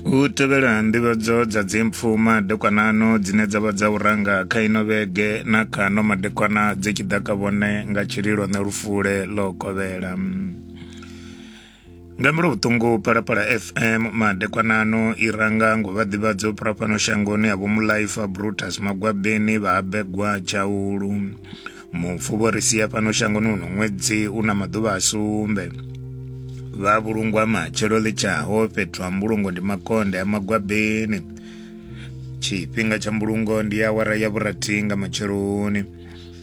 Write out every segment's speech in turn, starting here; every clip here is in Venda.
hu tevhela nḓivhadzo dza dzimpfu madekwanano dzine dza vha dza u ranga kha ino vhege na kano madekwana dzi tshi ḓa ka vhone nga tshililo ne lufule ḽo kovhela nga mbilu vhuṱungu palapala fm madekwanano i ranga ngo vha ḓivhadzo phura fhano shangoni ya vhomulaifa brutus magwabeni vha habegwa tshaulu mufu vho ri sia fhano shangoni uno ṅwedzi u na maḓuvha a sumbe vha vhulungwa matshelo ḽitshaho fhethu ha mbulungo ndi makonde a magwabeni tshifhinga tsha mbulungo ndi awara ya vhurathi nga matsheloni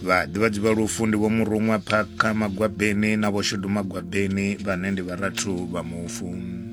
vhaḓivhadzi vha lufu ndi vho muruṅwa phakha magwabeni na vho shudu magwabeni vhane ndi vharathu vha mufu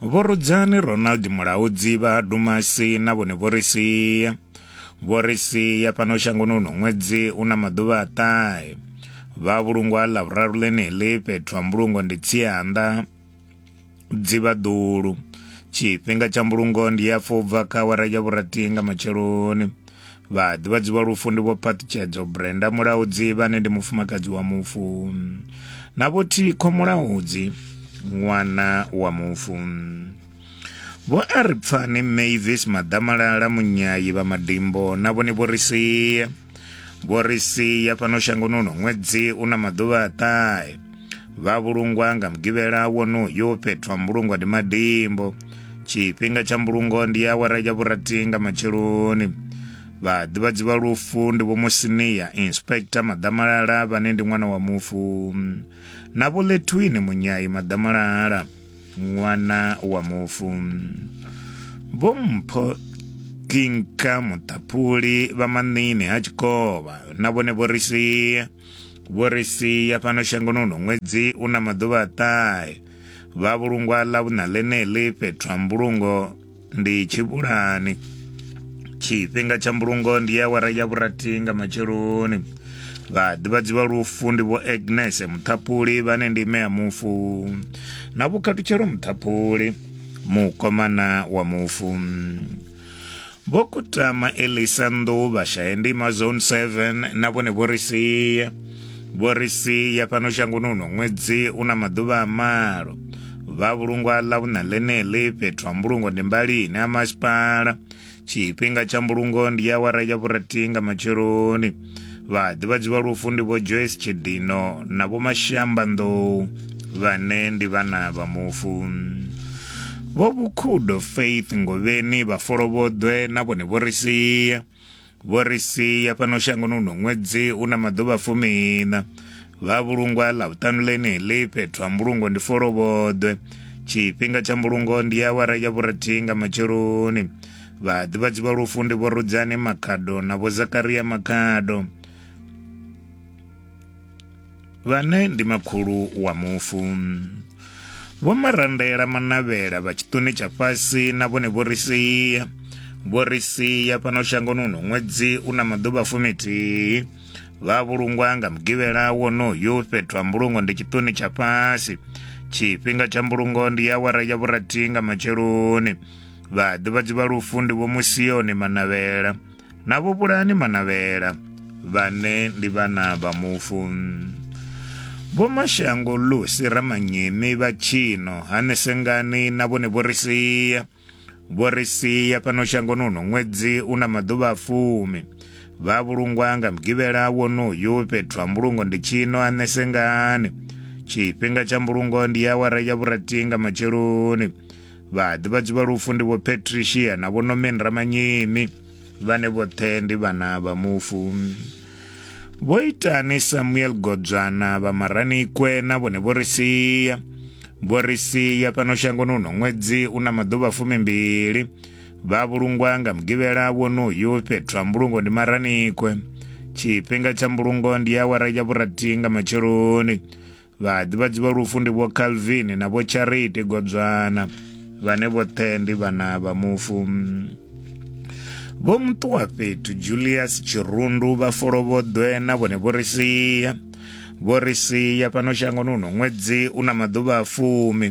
Vho Rudzani Ronald Mulaudzi vha Dumasi na vhone vho ri sia vho ri sia fhano shangoni uno ṅwedzi una maḓuvha a ṱahe vha vhulungwa ḽa vhuraru ḽeneḽi fhethu ha mbulungo ndi tsianda dzivhaḓulu tshifhinga tsha mbulungo ndi ya fobva kha awara ya vhurathi nga matsheloni Vhaḓivhadzi vha lufu ndi vho Phaṱhutshedzo Brenda Mulaudzi vhane ndi mufumakadzi wa mufu na vho Thikho Mulaudzi ṅwana wa mufu. Vho a ri pfani Mavis Maḓamalala Munyayi vha Madimbo na vhone vho ri sia. Vho ri sia fhano shangoni uno ṅwedzi u na maḓuvha a ṱahe. vha vhulungwa nga mugivhela wonoyo fhethu ha mbulungo ndi madimbo tshifhinga tsha mbulungo ndi awara ya vhurathi nga matsheloni vhaḓivhadzi vha lufu ndi vhomusiniya inspector maḓamalala vhane ndi ṅwana wa mufu na vholetwini munyai maḓamalala ṅwana wa mufu vhompho kinka muṱaphuli vha maṋini ha tshikovha na vhone vho ri sia vho ri sia fhano shangoni uno ṅwedzi u na maḓuvha a ṱahe vha vhulungwa ḽa vhuṋa ḽeneḽi fhethu ha mbulungo ndi tshivhulani tshifhinga tsha mbulungo ndi ya wara ya vhurathi nga matsheloni vhaḓivhadzi vha lufu ndi vho agnes muṱhapuli vhane ndi ime ya mufu na vhukhathutshelo muṱhapuli mukomana wa mufu vho kutama elisa nḓuvha shaendima zone 7 na vhone vho ri sia vho ri sia fhano shangoni uno ṅwedzi u na maḓuvha a malo vha vhulungwa ḽa vhuṋa ḽeneḽi fhethu ha mbulungo ndi mbalini ha masipala tshifhinga tsha mbulungo ndi awara ya vhurathi nga matsheloni Vhaḓivhadzi vha lufu ndi vho Joyce Tshidino na vho Mashamba Nḓou vhane ndi vhana vha mufu. Vho Vhukhudo Faith Ngovheni vha Folovhoḓwe na vhone vho ri sia. Vho ri sia fhano shangoni uno ṅwedzi u na maḓuvha fumiiṋa. Vha vhulungwa ḽa vhuṱanu ḽeneḽi fhethu ha mbulungo ndi Folovhoḓwe. Tshifhinga tsha mbulungo ndi awara ya vhurathihi nga matsheloni. Vhaḓivhadzi vha lufu ndi Vho Rudzani Makhado na Vho Zakaria Makhado vhane ndi makhulu wa mufu. Vho Marandela Manavhela vha tshiṱuni tsha fhasi na vhone vho ri sia vho ri sia fhano shangoni uno ṅwedzi u na maḓuvha fumithihi vha vhulungwa nga mugivhela wonoyu fhethu ha mbulungo ndi tshiṱuni tsha fhasi tshifhinga tsha mbulungo ndi awara ya vhurathi nga matsheloni vhaḓivhadzi vha lufu ndi vho musiyoni manavhela na vho bulani manavhela vhane ndi vhana vha mufu vho mashango lusi ramanyemi vha tshino hanesengani na vhone vho ri sia vho ri sia fhano shangoni uno ṅwedzi u na maḓuvha a fumi vha vhulungwa nga mugivhela wonoyu fhethu ha mbulungo ndi tshino hanesengani tshifhinga tsha mbulungo ndi awara ya vhurathi nga matsheloni Vhaḓivhadzi vha lufu ndi Vho Patricia na Vho Norman Ramanyemi, vhane vhoṱhe ndi vhana vha mufu. Vho Itani Samuel Godzwana vha Maranikwe na vhone vho ri sia. Vho ri sia fhano shangoni uno ṅwedzi u na maḓuvha fumimbili. Vha vhulungwa nga mugivhela wonoyu fhethu ha mbulungo ndi Maranikwe. Tshifhinga tsha mbulungo ndi awara ya vhurathi nga matsheloni. Vhaḓivhadzi vha lufu ndi vho Calvin na vho Charity Godzwana vhane vhoṱhe ndi vhana vha mufu. Vho Muṱuwa fhethu Julius Tshirundu vha Folovhoḓwe na vhone vho ri sia vho ri sia fhano shangoni uno ṅwedzi u na maḓuvha a fumi.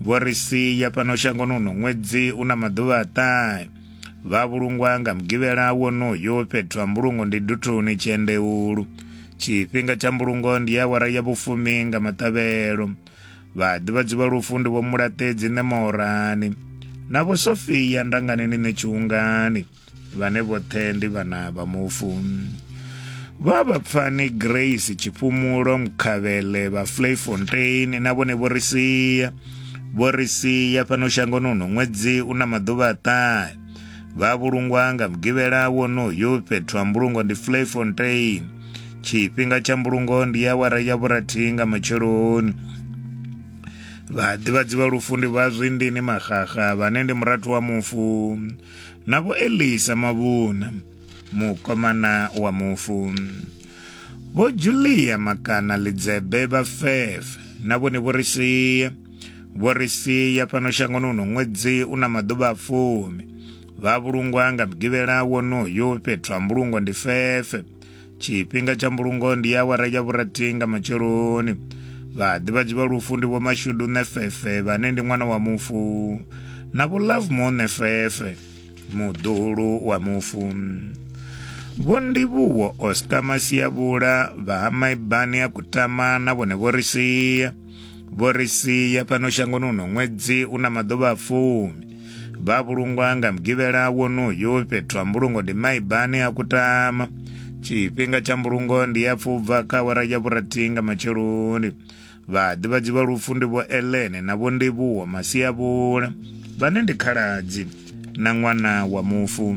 vho ri sia fhano shangoni uno ṅwedzi u na maḓuvha a ṱahe vha vhulungwa nga mugivhela wonoyo fhethu ha mbulungo ndi duthuni tshiendeulu tshifhinga tsha mbulungo ndi ya awara ya vhufumi nga maṱavhelo vhaḓivhadzi vha lufu ndi vho mulaṱedzi ṋemorani na vho sofia ndanganeni ṋetshiungani vhane vhoṱhe ndi vhana vha mufu vha vhapfani grace tshifhumulo mkhavhele vha flayfontein na vhone vho ri sia vho ri sia fhano shangoni uno ṅwedzi u na maḓuvha aṱahe vha vhulungwa nga mugivhela wonoyo fhethu ha mbulungo ndi flayfontein tshifhinga tsha mbulungo ndi ya wara ya vhurathihi nga matsheloni vhaḓivhadzi vha lufu ndi vha zwindini maxaxa vhane ndi murathu wa mufu na vho elisa mavhuna mukomana wa mufu vho julia makana lidzebe vha fefe na vhone vho ri sia vho ri sia fhano shangoni uno ṅwedzi u na maḓuvha a fumi vha vhulungwa nga mugivhela wonoyo fhethu ha mbulungo ndi fefe tshifhinga tsha mbulungo ndi awara ya vhurathi nga matsheloni vhaḓivhadzi vha lufu ndi vhomashudu nefefe vhane ndi ṅwana wa mufu na vho lovemore nefefe muḓuhulu wa mufu vho ndivhuwo oscar masiyavhula vha ha maibani a kutama na vhone vho ri sia vho ri sia fhano shangoni uno ṅwedzi u na maḓuvha a fumi vha vhulungwa nga mugivhela wonoyo fhethu ha mbulungo ndi maibani a kutama tshifhinga tsha mbulungo ndi ya pfubva kha awara ya vhurathi nga matsheloni vhaḓivhadzi vha lufu ndi vho elene na vho ndivhuwo masiavhula vhane ndi khaladzi na ṅwana wa mufu